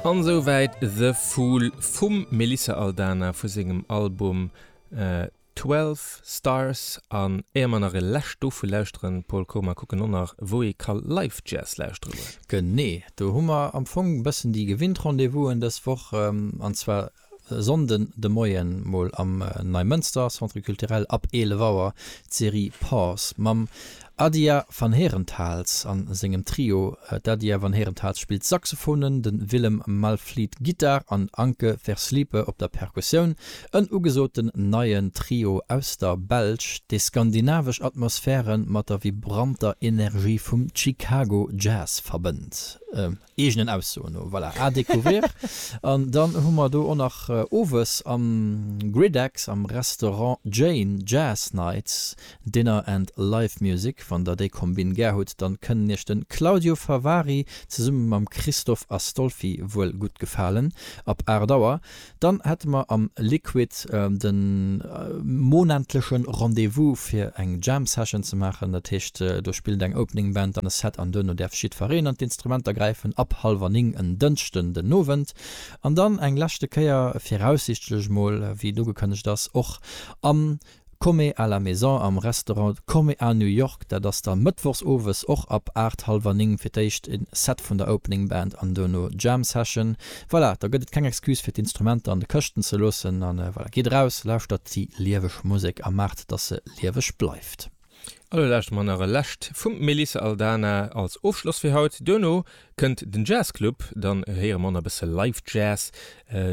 An souwäit The Fool vum Melissa Aldana vu sengem Album Twelve Stars. An éier mer nach e lescht dovu lauschteren, Paul Koma, kucken och nach wou ee ka Live Jazz lauschtere goen. Genee, do hu mer am Fong e bëssen déi gewinnt Rendez-vousen dës Woch, an zwar E Sonnden de Moien mol am Neimënster Centre Culturel ab 11 Auer d'Serie Pause mam Adia van Herentals an sengem Trio. D'Adia van Herentals spillt Saxophonen, den Willem Malvliet Gittar an Anke Verslippe op der Perkussioun. En ugesoten neien Trio aus der Belsch, dee skandinavesch Atmosphären mat der vibranter Energie vum Chicago Jazz verbënnt. Eegenen Aussoen no. Voilà, à découvrir. An dann hu mer do och nach owes am Griddex am Restaurant Jane Jazz Nights, Dinner and Live Music. Wann der déi Kombinn gär hutt, dann kënnen iech de Claudio Favari zesumme mam Christoph Astolfi wuel gutt gefalen. Ab 8 Auer Dann hätte mer am Liquid de monentlechen Rendez-vous fir eng Jam Session ze maachen. Dat heescht, do spillt eng Opening Band, dann e Set an duerno däerf jiddfereen an d'Instrumenter gräifen ab hallwer 9 en Dënschden den Owend. An dann eng leschte Kéier, viraussichtlech mol, wéi et ugekënnegt ass, och am Come à la maison am Restaurant Come à New York, dat ass da mëttwochs owes och ab 8, hallwer 9 fir d'éischt en Set vun der Opening Band an duerno Jam Session. Voilà, da gëtt et keng Excuse fir d'Instrumenter an de Këschten ze loossen an voilà, geet eraus, lauschtert déi lieweg Musek a maacht, dass se lieweg bleift. Elo lauschteren mer nach e lescht vum Melissa Aldana als Ofschloss fir haut. Duerno kënnt den Jazz Club, dann héiere mer nach e bësse Live Jazz.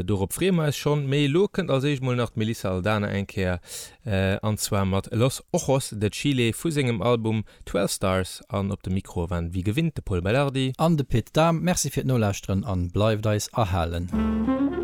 Dorop freeë mer eis schonn. Mee elo kënnt als éischt mol nach d'Melissa Aldana eng Kéier, an zwar mat Los Ojos de Chile vu sengem Album Twelve Stars. An op de Mikroe waren ewéi gewinnt de Pol Belardi. An de Pit Dahm. Merci fir d'Nolauschteren an bleift eis erhalen.